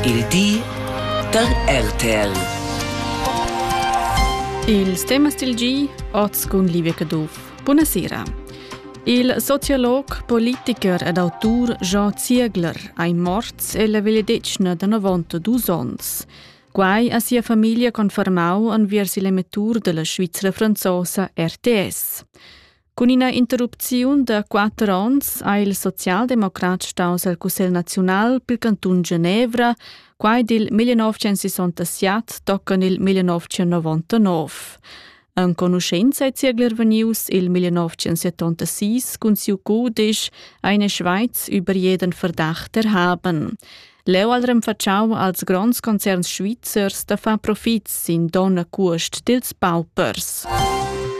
Il di da RTL. Ils temas dil gi oz cun Livia Caduff. Buonasera. Il sociolog, politiker ed autur Jean Ziegler ei morts ella vegliadetgna da 92 onns. Quai ha sia famiglia confermau enviers il emettur della Svizzera franzosa RTS. Cun ina interrupziun da quatter onns ha il socialdemocrat staus al Cussegl naziunal pil cantun Genevra. Quai dil 1967 toccan il 1999. Enconuscenza è ziegler venius il 1976 cun siu cudisch Eine Schweiz über jeden Verdacht erhaben. Leu al renfatschau als gronds concerns svizzers da far profits sin donna cuost dils paupers.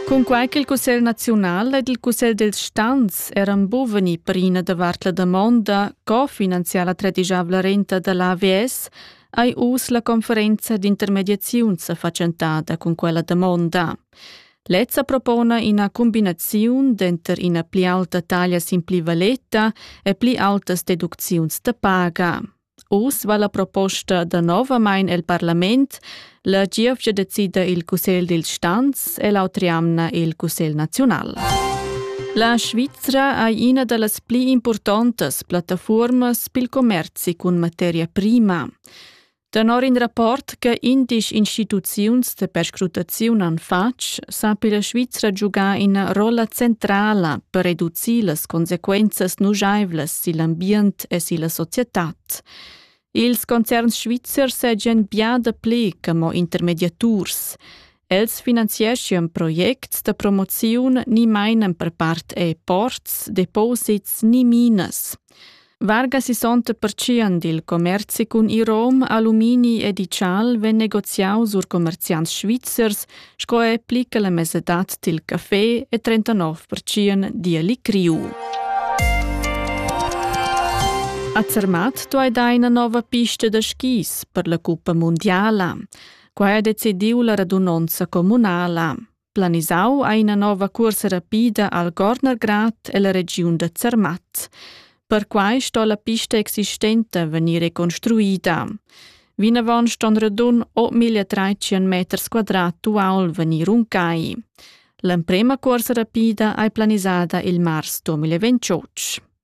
Cunquei che il Cussegl nazional ed il Cussegl dels Stans eran buveni prina davart la damonda co finanziar la tredijavla renta dall'AVS, ei uss la conferenza d'intermediaziun sa fatschentada cun quella damonda. Lezza propona ina cumbinaziun denter ina pli aulta taglia sin pli valeta e pli aultas deducziuns da paga. Uss va la proposta danovamein el parlament, la gievgia decida il Cussegl dil Stanz e l'autri amna il Cussegl naziunal. La Svizra ei ina dallas pli impurtontas plattafuormas pil commerci cun materia prima. Tenor in rapport che indisch instituziuns de perscrutaziun han fatg, sapi la Svizra giugar ina rolla centrala per reducir las consequenzas nujaivlas sil ambient e silla societad. Ils concerns svizzers seigien bia dapli che mo intermediaturs. Els finanzieschan projects da promoziun ni mainan per part e ports, deposits ni minas. Vargas isonta pertschien dil commerzi cun irom, alumini e digital vegn negoziau sur commerziants svizzers, sco è plica la mesadad dil café e 39% dialic riu. A Zermatt tu hai da ina nova pista da skis per la Cuppa Mondiala. Quai ha decidiu la radunonza communala. Planisau ha ina nova cuorsa rapida al Gornergrad e la regiun da Zermatt. Perquai sto la pista existenta vegnir reconstruida. Vinavon ston radun 8030 meters quadrat uaul vegnir runcai. L'emprema cuorsa rapida ei planisada il mars 2028.